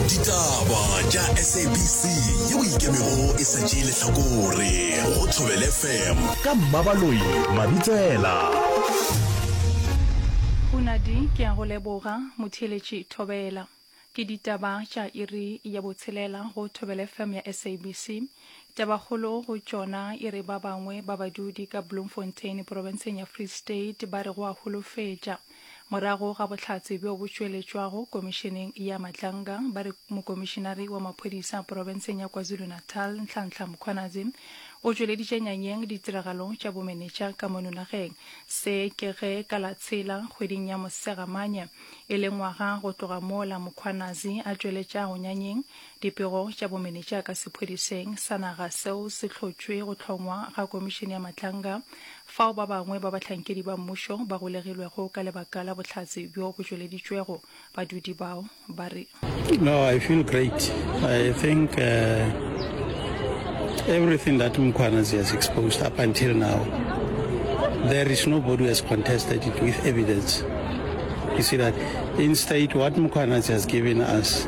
ditaba tša sabc yeo ikemego e sa tšee lehlakore go thobele fm ka mmabaloi mabitsela Hunadi ke a go leboga motheeletši Thobela. Ke ditaba tša iri ya botshelela go Thobela FM ya SABC. Tabakgolo go tšona e re ba bangwe ba badudi ka Bloemfontein porofenseng ya Free State ba re go a holofetša. Morago ga bohlatse bjo bo tšweletšwago Komišeneng ya Matlanga, ba re Mokomišenare wa Maphodisa Porofenseng ya KwaZulu-Natal, Nhlanhla Mkhwanazi, o tšweleditše nyanyeng ditiragalo tša bomenetša ka mono nageng. Se ke ge ka la tshela kgweding ya Mosegamanye, e le ngwaga go tloga mola Mkhwanazi a tšweletšago nyanyeng Dipego tša bomenetša ka sephwedišeng sa naga seo se hlotšwe go hlongwa ga Komišene ya Matlanga, fao ba bangwe ba bahlankedi ba mmušo ba golegilwego ka lebaka la bohlatse bjo bo tšweleditšwego, badudi bao ba re. No, I feel great. I think uh, everything that Mkhwanazi has exposed up until now, there is nobody who has contested it with evidence. You see that in state, what Mkhwanazi has given us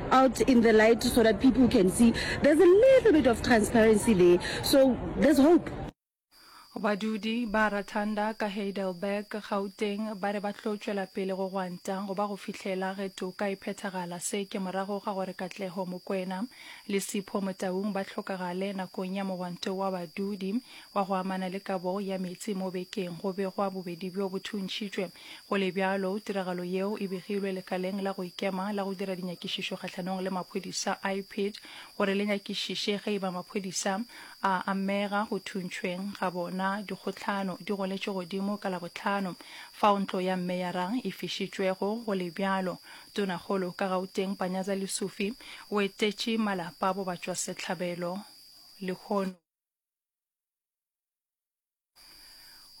out in the light so that people can see there's a little bit of transparency there so there's hope. Badudi ba Rathanda ka Heidelberg, Gauteng, ba re ba tlo tšwela pele go gwanta go ba go fihlela ge toka e phethagala. Se ke morago ga gore Katleho Mokwena le Sipho Motaung ba hlokagale nakong ya mogwanto wa badudi wa go amana le kabo ya metsi mo bekeng. Go begwa bobedi bjo bo thuntšhitšwe Go le bjalo, tiragalo yeo e begilwe lekaleng la go ikema la go dira dinyakišišo kgahlanong le maphodisa, IPID, gore le nyakišiše ge e ba maphodisa a amega go thuntšhweng ga bona. Dikgohlano di goletše godimo ka Labohlano fao ntlo ya meyara e fišitšwego. Go le bjalo, tonakgolo ka Gauteng Panyaza Lesufi o etetše malapa a bobatšwasehlabelo lehono.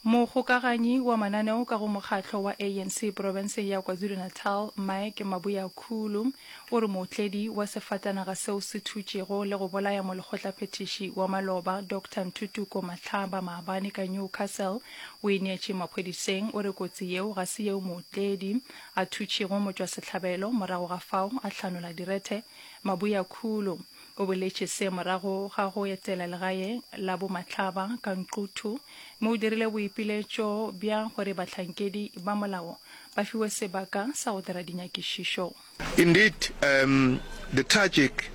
Mogokaganyi wa mananeo ka go mokgatlo wa ANC porofenseng ya KwaZulu-Natal, Mike Mabuyakhulu, o re mootledi wa sefatanaga seo se thutšego le go bolaya molekgotlaphethiši wa maloba Doctor Ntutuko Matlhaba maabane ka Newcastle o ineetše maphodiseng. O re kotsi yeo ga se yeo mootledi a thutšego motšwasehlabelo, morago ga fao a hlanola direthe. Mabuyakhulu O boletše se morago ga go etela legae la bomatlaba ka Nquthu, mo o dirile boipiletšo bja gore bahlankedi ba molao ba fiwe sebaka sa go dira dinyakišišo. Indeed, um, the tragic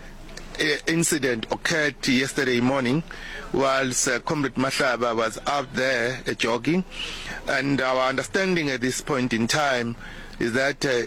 uh, incident occurred yesterday morning whilst uh, Comrade Mahlaba was out there uh, jogging. And our understanding at this point in time is that uh,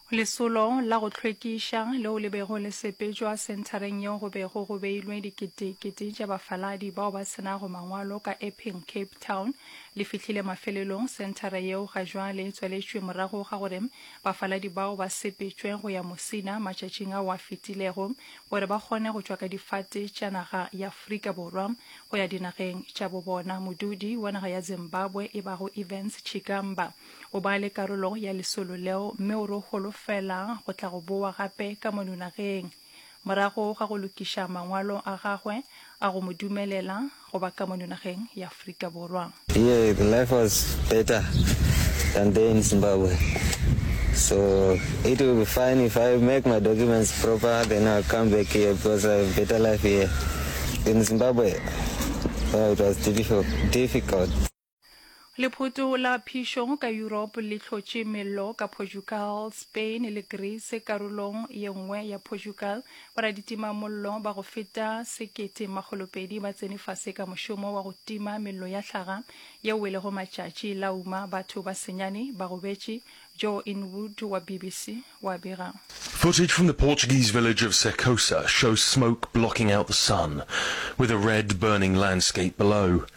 Lesolo la go hlwekiša leo le bego le sepetšwa senthareng yeo go bego go beilwe diketekete tša bafaladi bao ba se nago mangwalo ka Epping, Cape Town, le fihlile mafelelong. Senthara yeo ga jwale e tswaletšwe morago ga gore bafaladi bao ba sepetšwe go ya Musina matšatšing ao a fetilego gore ba kgone go tšwa ka difate tša naga ya Afrika Borwa go ya dinageng tša bo bona. Modudi wa naga ya Zimbabwe e bago Evans Chigamba O ba le karolo ya lesolo leo, mme o re o holofela go tla go bowa gape ka mono nageng. Morago ga go lokiša mangwalo a gagwe a go mo dumelela go ba ka mono nageng ya Afrika Borwa, Here the life was better than there in Zimbabwe so it will be fine if I make my documents proper then I'll come back here because I have better life here. In Zimbabwe, oh, it was difficult. Lephoto la phišo ka Europe le hlotše mello ka Portugal, Spain le Greece. Karolong ye nngwe ya Portugal, boraditimamollo ba go feta sekete makgolo pedi ba tsene fase ka mošomo wa go tima mello ya hlaga ye welego matšatši. La uma batho ba senyane ba gobetše, Joe Inwood wa BBC wa bega. Footage from the Portuguese village of Secosa shows smoke blocking out the sun, with a red, burning landscape below.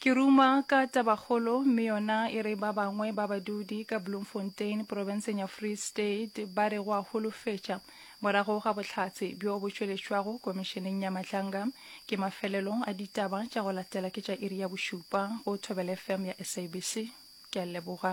Ke ruma ka tabakgolo mme yona e re ba bangwe ba badudi ka Bloemfontein porobenseng ya Free State ba re go a holofetša morago ga bohlatse bjo bo tšweletšwago komišeneng ya Matlanga ke mafelelo a ditaba tša go latela ke tša iri ya bošupa go Thobela FM ya SABC. Ke a leboga.